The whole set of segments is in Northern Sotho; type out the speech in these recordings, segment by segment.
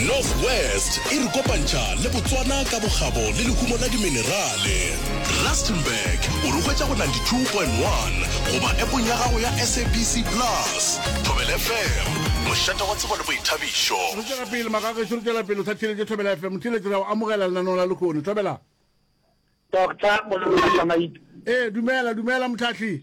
north west e re kopantšha le botswana ka bokgabo le lehumo la diminerale rustenburg o re hwetša go 92.1 goba epong ya gago ya sabc plus thobel fm mošate wa tsebo le boithabišo re tšwela pele magagešo re tšwela pele o sa theletše thobela fm motheletše ra o amogela lenaneo la lekgono thobela doctor ee dumela dumela motlhatlhi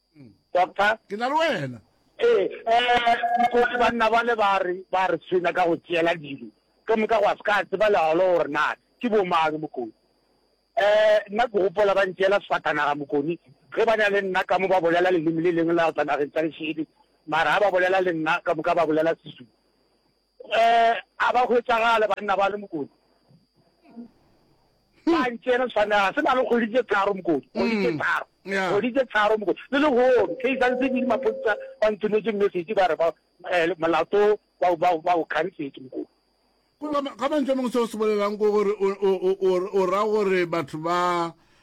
doctor ke na le wena ee um kore banna bale ba re ba re tshwenya ka go tšeela dilo ka moka go a se ka tseba leolo gore na ke bomang mokoni um nna ke gopola ba ntšeela sefatanaga mokoni ge ba na le nna ka mo ba bolela leleme le lengwe la go tla nageng tsa lešedi mara ga ba bolela le nna ka moka ba bolela sezulu A ba hwetšagale banna bale, Mokoni. Ba ntšene tshwanela, se na le kgwedi tše tharo, Mokoni. Kgwedi tše tharo. Kgwedi tše tharo, Mokoni. Le lehono, ke sa ntse ke maphodisa ba nthometše message ba re ba molato ba ba ba o khansetse, Mokoni. Go ka mantšwe a mangwe seo se bolelang ke gore o ra gore batho ba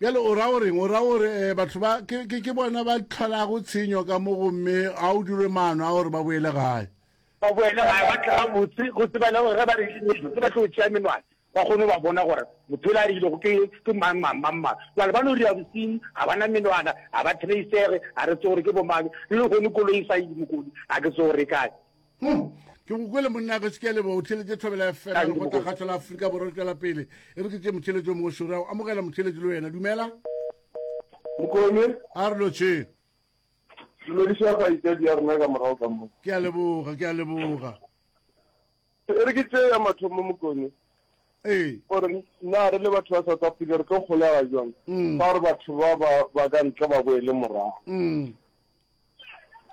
Bjale o ra o reng? O ra o re eh, batho ba ke, ke, ke bona ba tlholago tshenyo ka mo gomme a o dirwe maano a gore ba boele gae. Ba boele gae ba tle gabotse go tsebana gore ge ba re ke ba tlo tšea menwana ba kgone go ba bona gore motho yola a rilego ke, ke mang, mang, mang, mang. Jwale ba no ria bosinyi, ga ba na menwana, ga ba trace-ege, ga re tse gore ke bomang, le lehono koloi e sa ye dimokodi, ga ke tse gore e kae. ke go kwele monna ge se ke a leboga o theletše thobela ya fela le go takgatšo la aforika borwa le tswela pele e re ke tše motheletso mongwe šore ya go amogela motheletso le wena dumela mokone a re lotšhe dumediša kgaitsadi ya rena ka morago ka mo ke a leboga ke a leboga e re ke tše ya mathomo mokone ee gore na re le batho ba south africa re tlo kgolega jwang mm. fa gore batho ba ba ka ntle ba boele morago mm.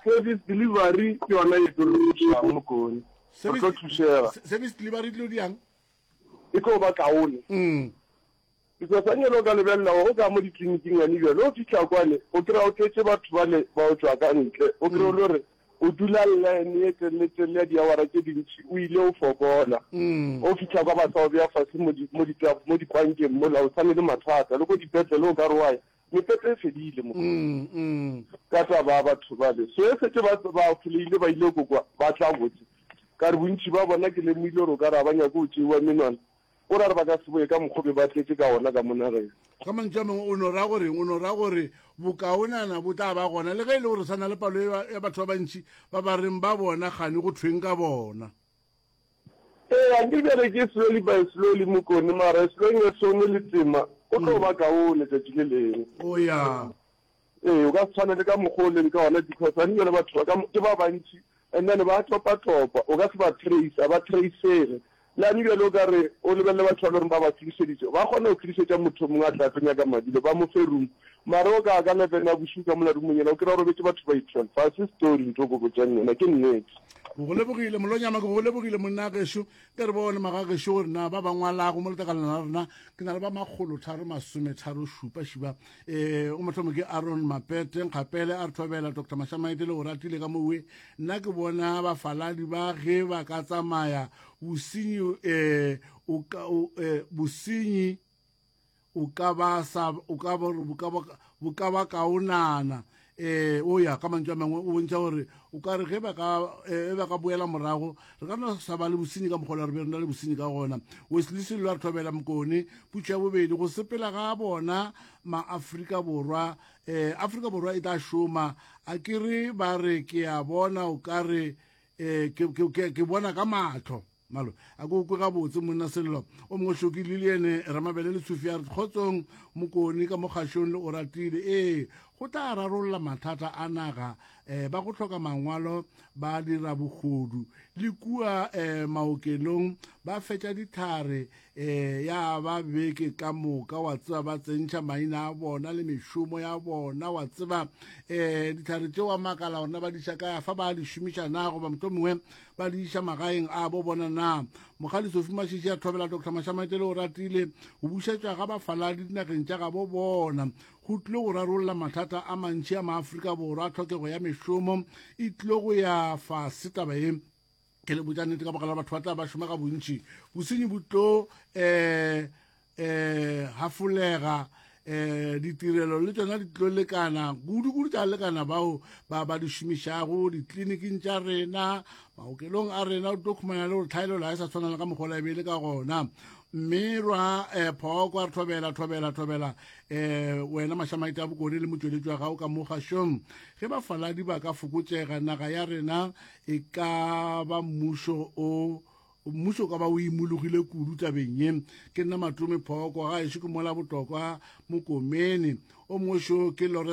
Service delivery ke yona e tlo re thušang mokone. Re tlo thušega. Service delivery e tlo diang? E tlo ba kaone. Mm. Because a nyelo ka lebelela o ka mo ditleliniking ya nibjale o fitlha kwane o kry-a o tletse batho ba le ba o tswa ka ntle o kry-a o le gore o dula line e telele telele ya diawara tse dintši o ile o fokola mm. o fitlha kwa ba sa o beya fase mo dikwankeng mola o tshwane le mathata le ko dipetlele o ka re wa Mepepe e fedile, Mokgotsi, ka taba ya batho bale. So e setse ba, ba foleile, ba ile go kwa, ba tla botse. Ka re bontši ba bona ke lemohile gore o ka re ga ba nyake go tšeiwa menwana, o ra re ba ka se boye ka mokgwa o be ba tletše ka wona ka mo nageng. Ka mantšu a mangwe, o no ra goreng? O no ra gore bokaonana bo tla ba gona, le ge e le gore sa na le palo ya batho ba bantši ba ba reng ba bona, kgane go thweng ka bona? Eya nke bjale ke slowly by slowly mokone mara as long as o ne le tema go tlo ba kaone tšatši le lengwe. O ya. Ee o ka se tshwane le ka mokgwa o leng ka ona because gane bjale batho ba ka ke ba bantši and then ba topa topa o ka se ba trace ga ba tracege. Le gane bjale o ka re o lebelele batho ba le gore ba ba khirišeditše ba kgona go khirišetša motho o mongwe a tla tlo nyaka madi le ba mo fe room mara o ka ka levena bošuu ka mola roomong yela o kry-a o robetše batho ba itwelve ga se story nto ko botšang yona ke nnete. Ke go lebogile molonyama ke go lebogile monna gešo ke re bone magagešo gore na ba ba ngwalago mo letakalana la rena ke na le ba makgolo tharo masome tharo šupa šiba um eh, o mothomo ke aron mapete nkgapele a re thobela dr mashamaete le go ratile ka mowe nna ke bona bafaladi ba ge ba ka tsamaya bosenyi um bosenyi o ka ba sa o ka ba o ka ba o ka ba ka o nana eh o ya ka mantšwa mangwe o bontša gore o ka re ge ba ka e ba ka boela morago re ka no sa ba le bosinyi ka mokgolo re be re na le bosinyi ka gona weslisi lo re thobela mokone putšo ya bobedi go sepela ga bona maafrika borwa eh afrika borwa e tla šoma a ke re ba re ke a bona o ka re eh ke ke ke bona ka matlho Malo, a ko kwe gabotse monna Sello. O mongwe Hloki, Lilian, Ramabele le Tshufi a re Kgotsong, Mokoni ka mo kgašong le Oratile. Ee, go tla rarolla mathata a naga eh, ba go hloka mangwalo ba dira bogodu le kua eh, maokelong ba fetša dithare eh, ya ba beke ka moka wa tseba ba tsentšha maina a bona le mešomo ya bona wa tseba eh, dithare tšeo wa makala gorena ba diša kaya fa ba di šomiša na goba moto mongwe ba le iša magaeng a bo bona na mogadi sofi mashiši a thobela dr mashamatele o ratile go bušetšwa ga bafaladi dinageng tša gabo bona go tlile go rarolla mathata a mantši a maaforika borwa tlhokego ya mešomo e tlile go ya fase taba e ke le botša nnete ka bogala batho ba tla ba šoma ga bontši bosenyi bo tlo um um hafolega um ditirelo le tsona di tlo lekana kudu-kudu tša lekana bao ba ba di šomišago ditleliniking tša rena maokelong a rena o tlo khumana le gore tlhaelelo ga e sa tshwana le ka mokgola e be e le ka gona mme rwa um eh, phoko a re thobela thobela thobela um wena mašamaite a bokone le motsweletši wa gago ka mo gašong ge bafaladi ba ka fokotsega naga ya rena e ka ba mmušo o Mmušo o ka ba o imologile kudu tabeng ye. Ke nna Matome Phoko, gaešo ke mola Botokwa Mokomene. O mongwe šo ke Lawrence.